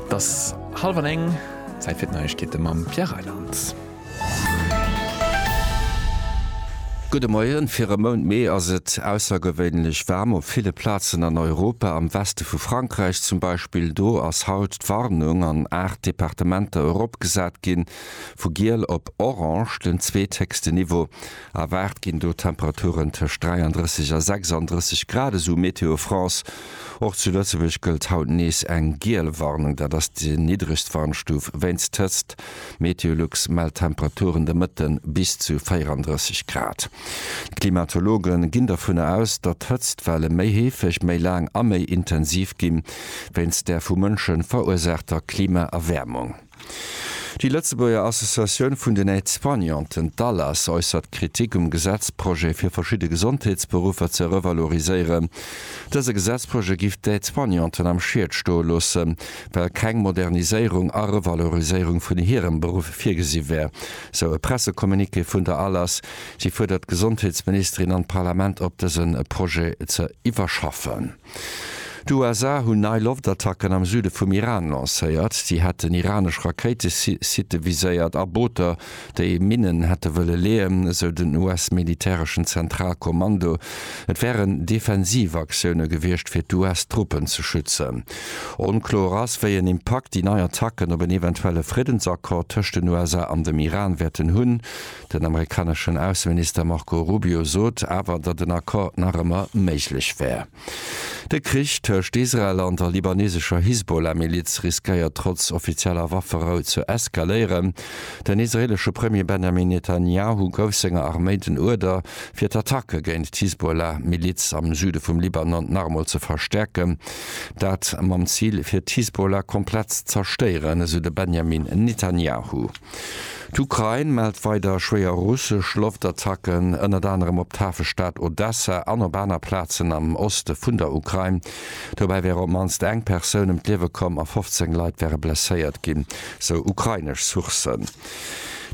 T'ass hallef an eng, Zäit fir d'Neiegkeete mam Pierre Reyland. Gudde Moien, Fir e Mount Mee ass et aussergewéinlech waarm op ville Plazen an Europa, am Weste vu Frankräich zum Beispill. Do ass haut d'Warnung an 8 Departementer eropgesat ginn, vu giel op orange, den zweethéchsten Niveau. Erwaart ginn do Temperaturen tëscht 33 a 36 Grad, esou Météo France. Och zu Lëtzebuerg gëllt haut nees eng giel Warnung. Dat ass déi niddregst Warnstuf wéinst d'Hëtzt. Meteolux mellt Temperaturen de Mëtte bis zu 34 Grad. D'Klimatologe ginn dovunner aus, datt d'Hëtztwelle méi heefeg, méi laang a méi intensiv ginn, wéinst der vu Mënsche verursaachter Klimaerwäermung. Déi Lëtzebuerger Associatioun vun den Aide-soignanten, d'ALAS, äussert Kritik um Gesetzprojet fir verschidde Gesondheetsberuffer ze revaloriséieren. Dëse Gesetzprojet giff d'Aide-soignanten am Schied stoe loosse well keng Moderniséierung a Revaloriséierung vun hirem Beruff virgesi wär, sou e Pressecommuniqué vun der ALAS. Si fuerdert d'Gesondheetsministerin an d'Parlament op dëse Projet ze iwwerschaffen. D'USA hunn nei Loftattacken am Süde vum Iran lancéiert. Si hätten iranesch Rakéitesitte viséiert a Booter, déi Minnen hätte wëlle leeën, esou den US-militäreschen Zentralkommando. Et wären defensiv Aktioune gewiescht, fir d'US-Truppen ze schützen. Onkloer ass, wéi en Impakt déi nei Attacken op en eventuelle Friddensaccord tëscht den USA an dem Iran wäerten hunn. Den amerikaneschen Ausseminister Marco Rubio sot awer, datt en Accord nach ëmmer méiglech wär. De Krich tëscht Israel an der libanesescher Hisbollah-Miliz riskéiert trotz offizieller Wafferou ze eskaléieren. Den israeelesche Premier Benjamin Netanjahu gouf senger Arméi den Uerder, fir d'Attacke géint d'Hisbollah-Miliz am Süde vum Libanon nach emol ze verstäerken. Dat mam Zil, fir d'Hisbollah komplett z'erstéieren, esou de Benjamin Netanjahu. D'Ukrain mellt weider schwéier russesch Loftattacken, ënnert anerem op d'Hafestad Odessa an op aner Plazen am Oste vun der Ukrain. Dobäi wär op d'mannst eng Persoun ëm d'Liewe komm a 15 Leit wäre blesséiert ginn, sou ukrainesch Sourcen.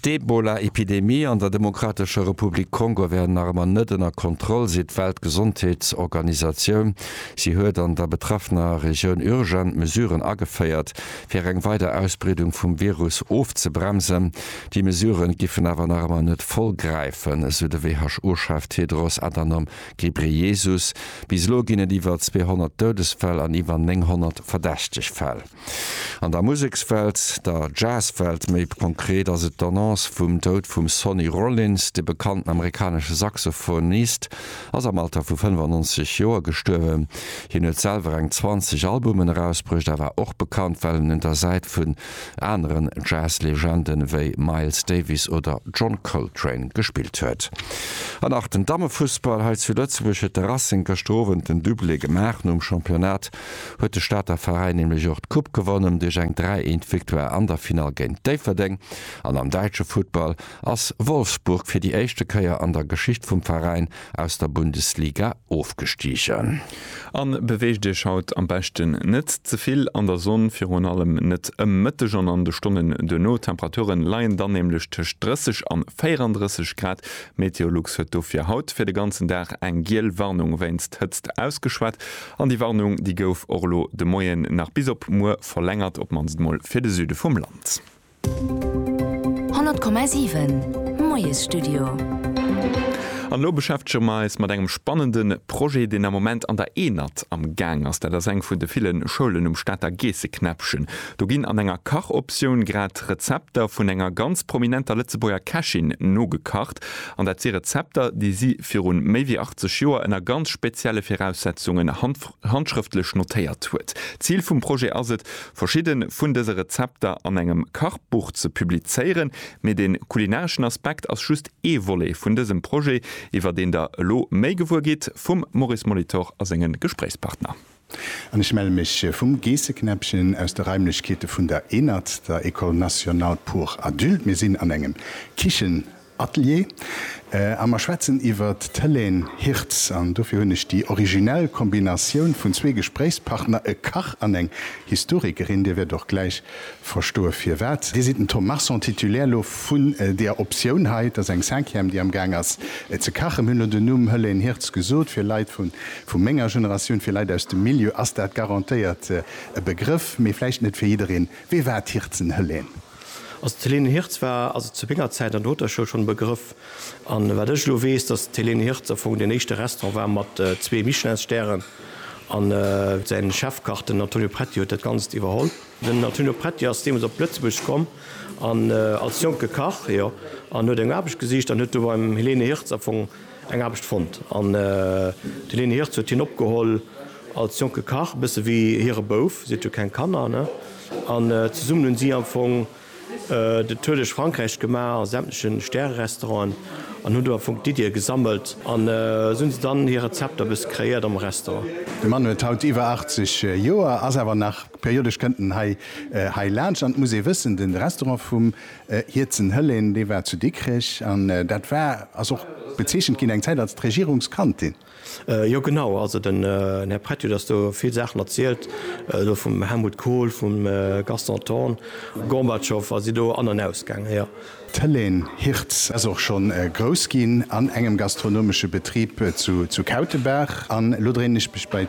D'Ebola-Epidemie an der Demokratescher Republik Kongo wär nach ëmmer net ënner Kontroll, seet d'Weltgesondheetsorganisatioun. Si huet an der betraffener Regioun urgent Mesuren ageféiert. Fir eng weider Ausbreedung vum Virus ofzebremsen. Déi Mesuren giffen awer nach ëmmer net voll gräifen, esou de WHO-Chef Tedros Adhanom Ghebreyesus. Bis elo ginn et iwwer 200 Doudesfäll an iwwer 900 verdächteg Fäll. An der Musekswelt, der Jazzwelt méi konkret, ass et d'Annonce vum Doud vum Sonny Rollins, de bekannten amerikanesche Saxophonist ass am Alter vu 95 Joer gestuerwen. Hien huet selwer eng 20 Albumen erausbruecht a war och bekannt, well en un der Säit vun aneren Jazz-Legende wéi Miles Davis oder John Coltrane gespillt huet. An nach den Dammefussball hei zu Lëtzebuerg huet de Racing gëschter Owend den Dublé gemaach. Nom Championnat huet de Stater Veräin nämlech och d'Coupe gewonnen duerch eng 3, 1 Victoire an der Finall géint Déifferdeng. An am däitsche Futtball ass Wolfsburg fir déi éischte Kéier an der Geschicht vum Veräin aus der Bundesliga ofgestigen. An beweegt Iech haut am beschten net ze vill an der Sonn, virun allem net ëm Mëtteg an an de Stonnen duerno. D'Temperature leien dann nämlech tëscht 30 an 34 Grad. Meteolux huet dofir haut fir de ganzen Dag eng giel Warnung wéinst Hëtzt ausgeschwat an déi Warnung déi gouf och elo de Moien nach bis op muer verlängert, op mannst mol fir de Süde vum Land. 100,7 Moiesstudio. An elo beschäftege mer eis mat engem spannende Projet, deen am Moment an der Enert am Gaang ass. Dat ass eng vun de ville Schoulen um Stater Geesseknäppchen. Do ginn an enger Kachoptioun grad Rezepter vun enger ganz prominenter Lëtzebuerger Kächin nogekacht. An dat si Rezepter, déi si viru méi wéi 80 Joer ënner ganz spezielle Viraussetzungen handschrëftlech notéiert huet. D'Zil vum Projet ass et, verschidden vun dëse Rezepter an engem Kachbuch ze publizéieren, mee de kulinareschen Aspekt ass just ee Volet vun dësem Projet, iwwer deen der elo méi gewuer gitt vum Maurice Molitor a senge Gespréichspartner. An ech melle mech vum Geesseknäppchen aus de Raimlechkeete vun der ENAD, der École Nationale pour Adultes. Mir sinn an engem Kichen Atelier a mer schwätzen iwwer d'Helène Hirtz. An dofir hunn ech déi originell Kombinatioun vun zwee Gespréichspartner, e Kach an eng Historikerin, Dir wäert och gläich verstoe firwat. Dir sidd den Tom Marson, Titulaire elo vun deer Optioun hei. Et ass eng Cinquième, déi amgaang ass ze kachen. Mir hunn elo den Numm Helène Hirtz gesot. Fir Leit vu menger Generatioun, fir Leit aus dem Milieu ass dat garantéiert e Begrëff, mee vläicht net fir jiddereen. Wie war d'Hirtzen Helène? Also d'Helene Hirtz war also zu menger Zäit an der Hotelschoul schonn e Begrëff. An wat ech elo weess, dass d'Helene Hirtz am Fong deen éischte Restaurant war mat zwee Michelinstären. An säin Chefkach, den Antonio Pretti, huet dat Ganzt iwwerholl. Den Antonio Pretti ass deemools op Lëtzebuerg komm an als jonke Kach, jo, an huet eng Aarbecht gesicht an huet do beim Helene Hirtz am Fong, Eng Aarbecht fonnt an de Leni Hirtz huet hien opgeholl als jonke Kach, e bësse wéi hire Bouf, si hat jo keng Kanner, ne? An zesummen hunn si am Fong de Tour duerch Frankräich gemaach a sämtleche Stärerestauranten an hunn do am Fong d'Iddië gesammelt an esou hunn se dann hir Rezepter e bësse kreéiert am Restaurant. De Mann huet haut iwwer 80 Joer, ass awer nach periodesch kënnt en hei laanscht an et muss ee wëssen, de Restaurant vum Hierzen Hëllén, dee war zu Dikrech, an dat war, ass och bezeechent ginn eng Zäit als d'Regierungskantin. Jo genau, also den Här Prett huet eis do vill Saachen erzielt, do vum Helmut Kohl, vum Gaston Thorn, Gorbatschow, a si do an an aus gaangen, jo. D'Hëllén Hirtz ass och schonn grouss ginn an engem gastronomesche Betrib zu Kautebaach, an elo dréinen ech mech bei.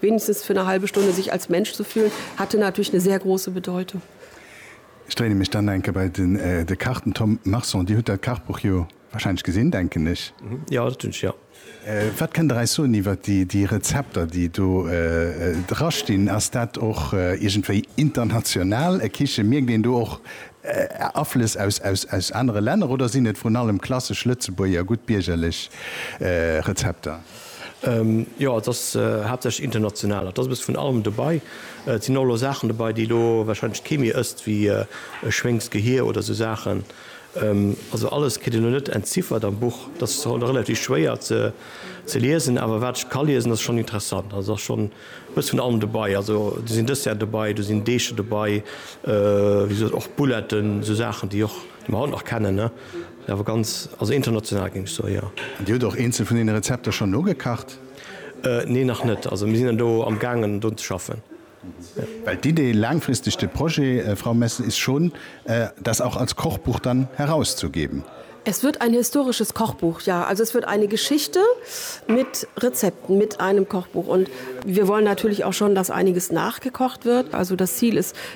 wenigstens für eine halbe Stunde sich als Mensch zu fühlen, hatte natürlich eine sehr große Bedeutung. Ech dréine mech dann enke bei den de Kach, den Tom Marson. Dir hutt dat Kachbuch jo wahrscheinlech gesinn, denken ech? Jo, dat hunn ech, jo. Wat kënnt Der eis soen iwwer déi déi Rezepter, déi do dra stinn? Ass dat och iergendwéi international, e Kiche? Mierkt een do och Aflëss aus aus aus anere Länner oder sinn et vrun allem klassesch lëtzebuerger, gutt biergerlech Rezepter? Jo, et ass haaptsächlech international. Et ass e bësse vun allem dobei. Et sinn och elo Saachen dobei, déi elo warscheinlech kee méi ësst, wéi e Schwéngsgehier oder esou Saachen. Also alles kritt een elo net entziffert am Buch. Dat ass och relativ schwéier ze liesen. Awer wat ech ka liesen, ass schonn interessant. Also et ass schonn e bësse vun allem dobei. Also do sinn Desserten dobei, do sinn Deecher dobei, wéi gesot och Bouletten, esou Saachen, déi och, déi mer haut nach kennen, ne? Awer ganz, also international géing ech soen, jo. An Dir hutt och eenzel vun deene Rezepter schonn nogekacht? Nee, nach net. Also mir sinn do am gaangen drun ze schaffen, jo. Well d'Idee laangfristeg, de Projet, Frau Messel, ist schon, das auch als Kochbuch dann herauszugeben? Es wird ein historisches Kochbuch, ja. Also es wird eine Geschichte mit Rezepten, mit einem Kochbuch. Und wir wollen natürlich auch schon, dass einiges nachgekocht wird. Also das Ziel ist,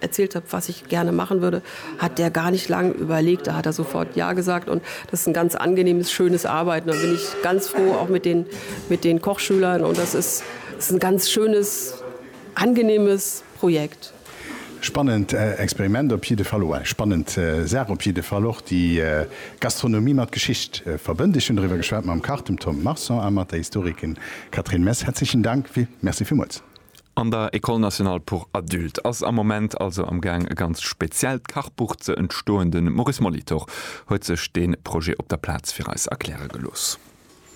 erzählt hab was ich gerne machen würde, hat der gar nicht lang überlegt, da hat er sofort ja gesagt und das ist ein ganz angenehmes schönes Arbeiten. Da bin ich ganz froh auch mit den, mit den Kochschülern und das ist, das ist ein ganz schönes angenehmes Projekt. Spannend Experiment op jidde Fall, eng spannend Saach op jidde Fall och, déi Gastronomie mat Geschicht verbënnt. Ech hunn doriwwer geschwat mam Kach, dem Tom Marson, a mat der Historikerin Catherine Mess. Herzlichen Dank, merci villmools. An der École nationale pour adultes ass am Moment also am Gaang e ganzt speziellt Kachbuch ze entstoen. De Maurice Molitor huet sech dee Projet op der Plaz fir eis erkläre gelooss.